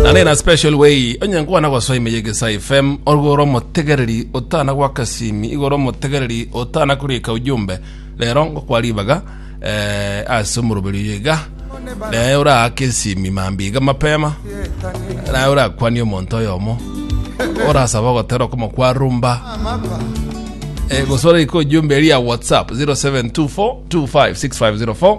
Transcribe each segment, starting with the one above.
na nina special way onye nkwana gosoa ime yegesa fm orwo ore omotegereri otana gwaka simi igo ore omotegereri otana kurika ujumbe rero ngokwa ribaga eh, ase omoroberi oyo iga naye oraake esimi mambi iga mapema naye orakwanie omonto oyomo orasaba ogotera okomokwa rumba Eh, gosora iko ujumbe eri ya whatsapp 0724256504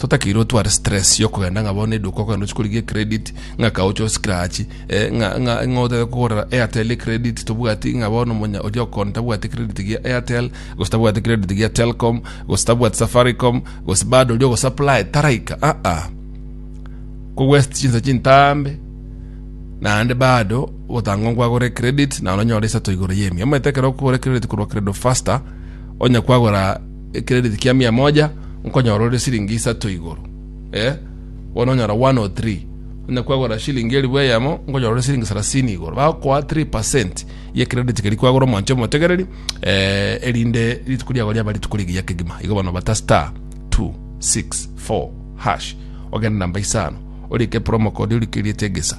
totakeire otware stress yokogenda ng'a bono eduka okogenda ochia korigia credit ng'a kaocha oscratch eh, ng'a ng'a ng'a otebe kogorera airtel credit tobwati ng'a bono monya oria okon tabwate credit gia airtel gose tabwate credit gia telcom gose tabwate safaricom gose bado oria ogosupply taraika ah ah kogwest chinsa chintambe naende bado gotanga nkwagore credit na ononyore isato igoro yemi omanyete ekero okogora credit korwa credo faster onya kwagora Ekerediti kia mia moja nkonyora ore siringi isato igoro. Eh, bono onyora 103. Onye kwagora shilingi elifu eyemo nkonyora ore siringi sarasini igoro. Bagokoa 3% ye credit keri kwagora omonche omotegereri eh, erinde rituko riago riaba rituko rigiya kegima. Igo bono bata star 264 hash ogende namba isano orike promo code orikeriete egesa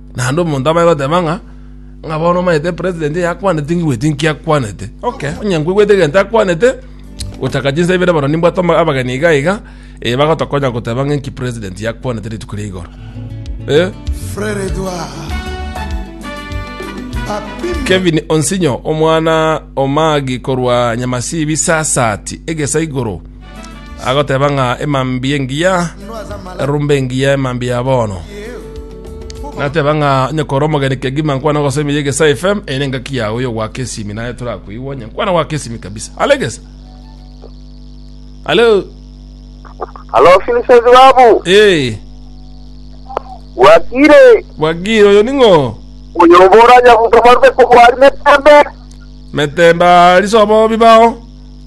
Naende omonto abare goteba ng'a ng'a bono omanyete president yakwaneti ngigweti nkiakwanete okay onye nkwigwete egento akwanete gochaka chinsa ibere bono nimbwate ama- abageni iga iga eh, bagotokonya goteba ng'a nki president yakwanete rituko ria igoro eh? Frere Edouard. Apime. kevin onsinyo omwana omagi korwa nyamasibi sasati egesa igoro agoteba ng'a emambia engiya erumbe engiya emambia ya bono nateba ng'a onye kora omogeni kegima nkwana gose emiya egesa fm eye ne engaki yago yo gwaka esimi naye torakoigwa onye nkwana gwaka esimi kabisa alegesa alo Halo Vincent babu, ee wakire bwagire oyo ning'o uyoboranya butomarwe kubwari metembe. metemba risobo bibao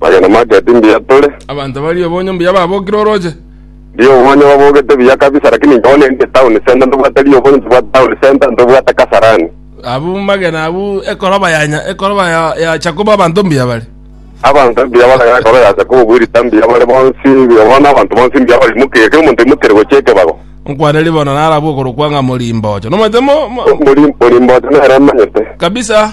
Magena make ti mbuya tore. Abanto ba riobonyo mbuya babokire orooche. Riobonyo babogete buya kabisa lakini inche bono ninde town centre ntobwate riobonyo ntobwate town centre ntobwate kasarani. Abwo magena abwo ekoroba ya nya- ekoroba ya- ya Jakobo abanto mbuya bare. Abanto mbuya bare ekoro ya Jakobo bwerita mbuya bare bonsi bono abanto bonsi mbuya barimokire kera omonto aimokire gochia ekebago. Nkwaneri bono narabwo okorokwa ng'a Morimboocho. Nomanyete mo- mo- Mori- Morimboocho nere emanyete. kabisa.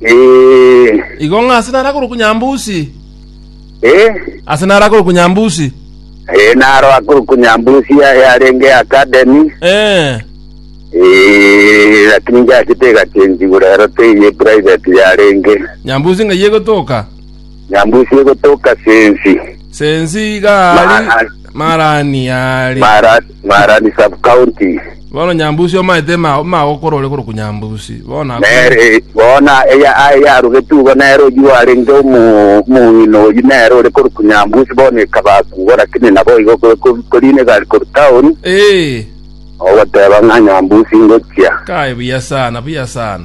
Eh, Igo ng'a ase narakorokwa Nyambusi, eh, ase narakorokwa Nyambusi. eh, naro akorokwa Nyambusi ya- yarenge academy. Eh, Eh, lakini ngiachete egachensiwa rero teiye private yarenge. Nyambusi ng'ai egotoka. Nyambusie gotoka sensi. Sensi iga ari Mara- Marani yari. Mara- Marani sub-county. Bono Nyambusi omaete ma- magokora ore korokwa Nyambusi. Bono ako- Nere bona eya aye yarugetwe igo nere oyio arenge omu- omong'ina oyio nere ore korokwa Nyambusi bono ekabakugwa lakini nabo igo ko- ko- korina egari korwa town Eh, ogoteba ng'a Nyambusi ngochia. kai buya sana, buya sana.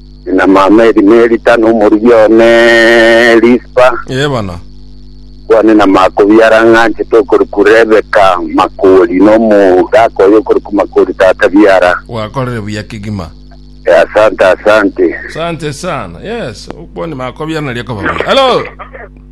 Namama eri Melita, na omorigia one Rispa, Ee bono. kwane namakobiara ng'a anchete okoriku Rebeka makori, na omogaka oye okoriku makori tata biara. Gwakorire buya kegima. E, asante asante. Asante sana. Yes, okwani makobiara naria koba buya. Hello.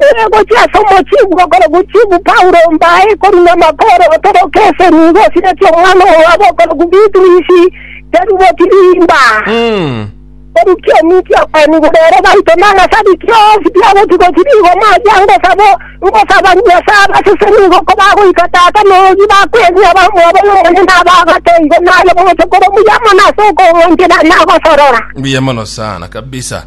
Ere gochia ase omochie bw'okoro gochibu Paulo mbae korwa namakoro otoroke ase nigo osiretie omwana oye wa bokoroku Bitrisi terigwe kirimba. Orukia ominchia abani igoro ere baito nang'asabi kionsi biagotigwa chirigo machia ngosabo ngosaba Nyasae abasese nigo kobagoika Tata noyogi bakwenia abamwabo nomonye nabagato igo naye bogocha kore omuya mono ase okong'wanchera nagosorora. Mbuya mono sana kabisa.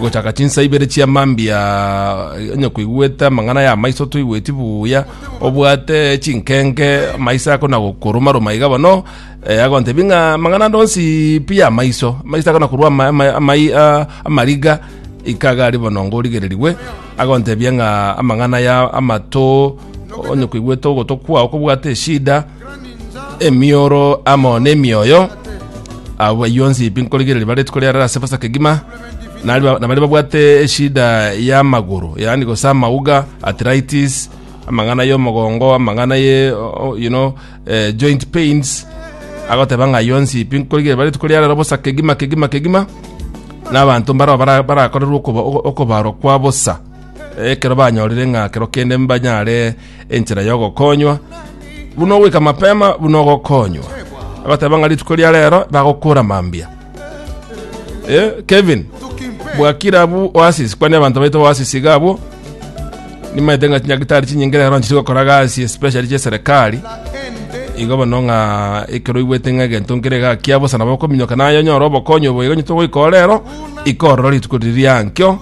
gochaka chinsa ibere chia mambia onye koigwete amang'ana ya maiso toigweti buya obwate chinkenge maiso akona gokoruma ruma iga bono eh, agontebi ng'a amang'ana ande onsi pi ya maiso maiso akona korwa ama- ama- amai- ah, amariga ikaga ari bono ngorigererigwe agontebia ng'a amang'ana ya amato onye koigwete ogoto kwao kobwate eshida emioro amo nemioyo abo bayio onsi pi nkorigereria bare rituko riarara ase bosa kegima nari ba- nabari babwate eshida y'amagoro yaani gose amauga arthritis amang'ana y'omogongo amang'ana ye o- o- you know eh, joint pains agoteba ng'a ayio onsi pi nkorigereria bare rituko riarara bosa kegima kegima kegima na abanto mbarao bara- barakorerwe okoba- okobarwa kwa bosa ekero banyorire ng'a kero kende mbanyare enchera y'ogokonywa, buna ogoika mapema, buna ogokonywa. Agoteba ng'a rituko ria rero bagokora mambia. Eh, Kevin, bwakira bu Oasis, kwani abanto baito Oasis iga abwo, nimaete ng'a chinyagitari chinyinge rero nchiri gokora gasi especially chia serikali igo bono ng'a ekero oigwete ng'a egento nkere gakia bosa nabo okominyoka naye onyore obokonyi obo igo onye togoika orero ikorora rituko riri riankio